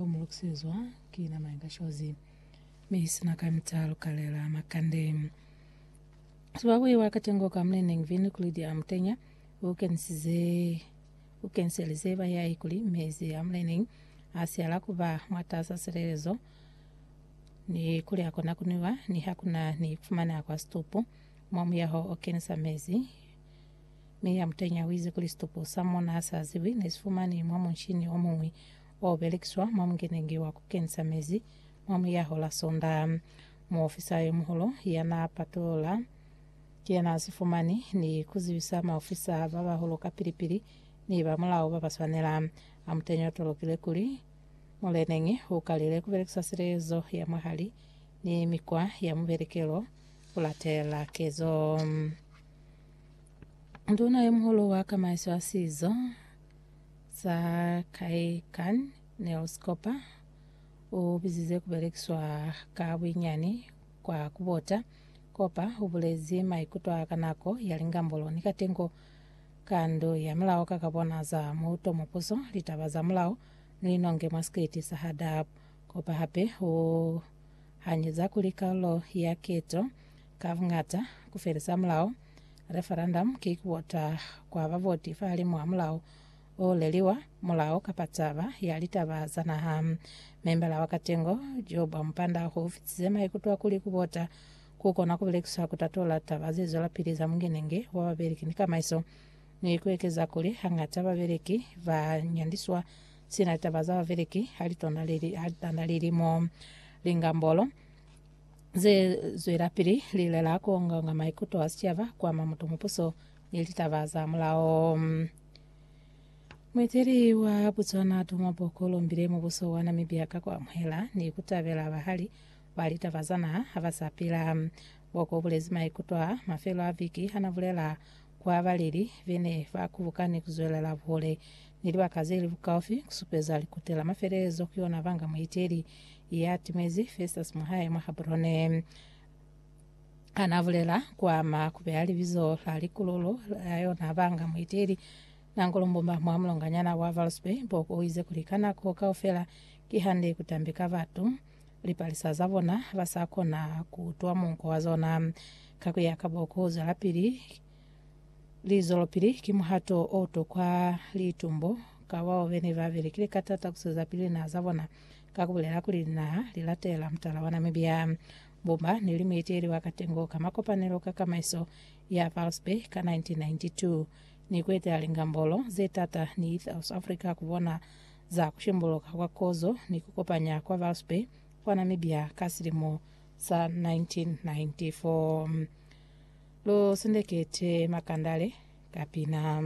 Mu lokisezwa ki nama ya kashozi, mi i sina kamita lu kalela makande. Sibabuhi wa katengo ka muneneñi Vin Kulidi a mutenya, u kenisize u keniselize bahiahi kuli mezi a muneneñi a siala ku ba mwatasa silelezo ni kuli a kona ku nwiwa ni ha ku na ni kufumana kwa situpu mwa muyaho o kenisa mezi. Mi ya mutenya u ize kuli situpu sa mona sa ziwi ne si fumani mwa munshini o muñwi o belekiswa mwa mukeneñi wa ku kenisa mezi mwa muyaho la Sondaha. Muofisa yo muhulu ya naa patulula ki yena a si fumani ni ku zibisa maofisa ba bahulu kapili-pili ni ba mulao ba ba swanela. A muteñi o tolokile kuli muleneñi u kalile ku belekisa silezo ya mwahali ni mikwa ya mubelekelo ku latela kezo nduna yo muhulu wa kamaiso ya sizo, Sa kai Kan Nels Cooper u bizize ku belekiswa ka buinyani kwa ku bota. Cooper u bulezi maikuto a ka nako ya lingambolo ni katengo ka ndu ya mulao ka ka bona za muuto mwa puso, litaba za mulao ni linonge mwa sikiti sa ha Dab. Cooper hape u hanyeza kuli kalulo ya keto ka buñata ku felisa mulao Referendum ki kuvota kwa bavoti fahalimw'a mulao o leliwa, mulao kapa taba ya litaba za naha. Membala wa katengo jo bwa mupanda ho fitize maikutwa kuli kuvota ku kona ku belekiswa ku tatola taba ze zwelapili za mungenenge wa babeleki ni kamaiso, ni ku ekeza kuli hangata babeleki ba nyandiswa sina litaba za babeleki ha litanda lilimo. Lingambolo. Ze zwelapili lilela ku ongaonga maikuto a sicaba, ku ama mutu mupuso, ni litaba za mulao. Mueteli wa Botswana Duma Boko lombile mubuso wa Namibia ka ku amuhela ni ku tabela bahali ba litaba za naha ha ba sa pila. Boko ubulezi maikuto a mafelo a viki ha na bulela ku abaleli be ne ba kubukani ku zwelela buhole ni libaka ze li bukaufi ku supeza likuti la mafelelezo ku yona banga mueteli ya timezi Festus mwahae mwa Habrone. Ana bulela kwa ma kubeha libizo la likululu la yona banga muiteli nangu lumbumba mwa mulonganyana wa Valsby Boko o ize kuli ka nako kaufela ki hande ku tambika batu lipalisa za bona ba sa kona ku utwa munko wa zona. Ka ku ya ka Boko, ku zwelapili li zwelopili ki muhato o utokwa litumbo ka bao bene ba belekile ka tata ku swezapili linaha za bona. ka ku bulela kuli linaha li latela mutala wa Namibia. Bo ba ne li mueteli wa katengo ka makopanelo ka kamaiso ya Pulse Bay ka 1992 ni ku etela lingambolo ze t'ata ni South Africa ku bona za ku shembuluka kwa kozo ni ku kopanya kwa Pulse Bay kwa Namibia ka silimo sa 1994. Lu sendekete makandale ka pina.